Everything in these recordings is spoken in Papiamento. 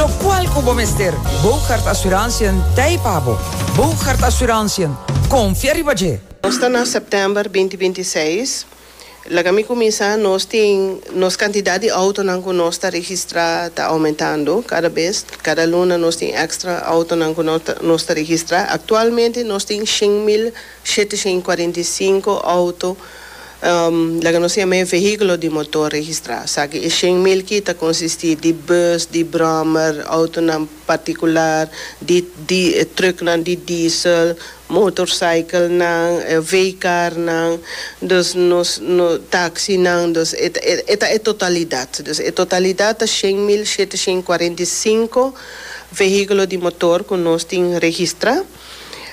Lokual ku bo mester Bogardt Asuransiën t'ei pa bo. Bogardt Asuransiën, konfia riba dje! Nos ta na sèptèmber binti binti i seis. Laga mi kuminsá, nos tin, nos kantidat di outonan ku nos ta registrá ta oumentando kada bes. Kada luna nos tin èkstra outonan ku nos ta registrá. Aktualmente nos tin shen mil. 745 auto laga nos yama e vehiculo di motor registra, saki e shen mil ki ta consisti di bus, di brommer, autonan particular, di di trucknan di diesel, motorcyclenan, veecarnan, dus nos no taxinan, dus e ta e ta e totalidad, dus e totalidad ta shen mil shete shen cuarenta y cinco vehiculo di motor cu nos tin registra.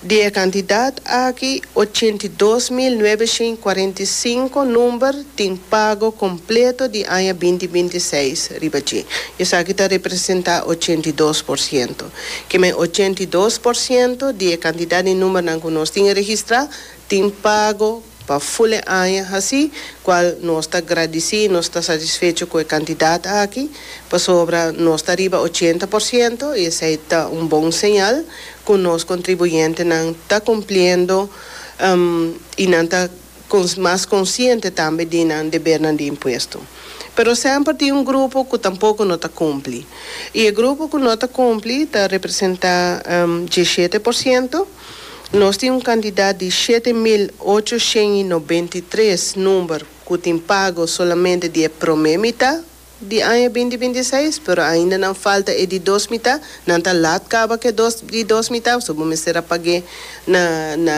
Di e kantidat aki, ochenta i dos mil nuebeshen i kuarenta i sinku number tin pago kompleto di aña binti binti seis riba dje. Esaki ta representá ochenta i dos por siento. Kiemen ochenta i dos por siento di e kantidat di numbernan ku nos tin registrá tin pago. Pa ful e aña haci cual nos ta gradici, nos ta satisfecho cu e cantidad aki, pasobra nos ta riba ochenta por ciento y esey ta un bon señal cu nos contribuyentenan ta cumpliendo y nan ta mas consciente tambe di nan debernan di impuesto. Pero semper tin un grupo cu tampoco no ta cumpli y e grupo cu no ta cumpli ta representa dieschete por ciento. Nos tin un kantidat di shete mil ocho shen i nobenta i tres number ku tin pago solamente di e promé mitá di aña binti binti i seis, pero ainda nan falta e di dos mitá. Nan ta lat kaba ku e dos di dos mitá, so bo mester a pag'é na na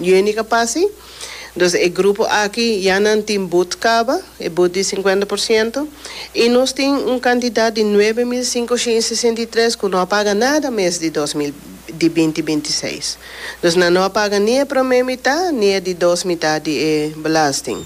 juni ku a pasa ei. Entonces e grupo aki ya nan tin but caba, e but di cincuenta por ciento, y nos tin un cantidad di nuebe mil cincoshint y sesenta y tres cu no a paga nada mes di dos mil di binti binti i seis. Entonces nan no a paga ni e prome mitad ni e di dos mitad di e belasting.